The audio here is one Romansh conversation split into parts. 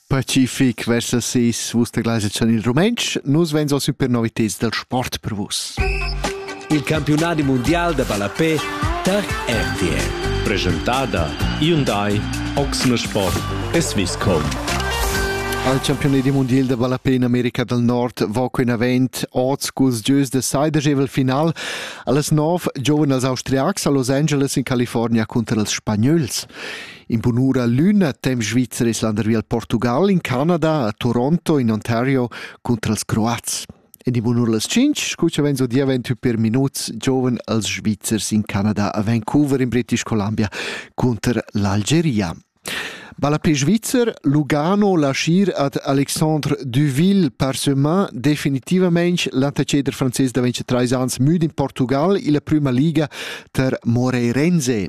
Pacific versa ses vus da Gleise chan il rumentsch. Nus vegns a super novitads del sport per vus. Il campionadi mundial da ballapé tar RTL. Presentada Hyundai Oxner Sport e Swisscom. Al campionadi mondial da ballapé in America del Nord va quinavent oz cus gieus de saidegevel final allas 9 giovens als austriacs a Los Angeles in California cunter els spagnols. In bunura lün a temp svizzer es landervi al Portugal, in Canada, a Toronto, in Ontario cunter els Croats. En die bunura las 5, scucha venzo dia 28 per minuts, giovane als Svizzers in Canada a Vancouver in British Columbia cunter l'Algeria. Balla pe Svizzer, Lugano lascier ad Alexandre Duville parsemin definitivamente l'anteceder francés da 23 ans müd in Portugal illa prima liga ter Moreirense.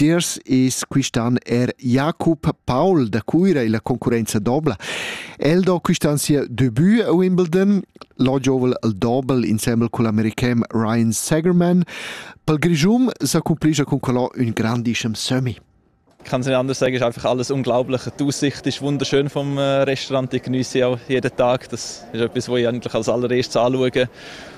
Tiers es quist'an er Jakob Paul da Cuira illa concurrenza dobla. El do quist'an sia debut a Wimbledon. Lo giovel il dobel insembel cun l'american Ryan Sagerman. Pel Grischun s'accumplischa cun quello ün grandischem sömmi. Ich kann es nicht anders sagen, es ist einfach alles unglaublich. Die Aussicht ist wunderschön vom äh, Restaurant. Ich genieße sie auch jeden Tag. Das ist etwas, was ich eigentlich als allererstes anschaue.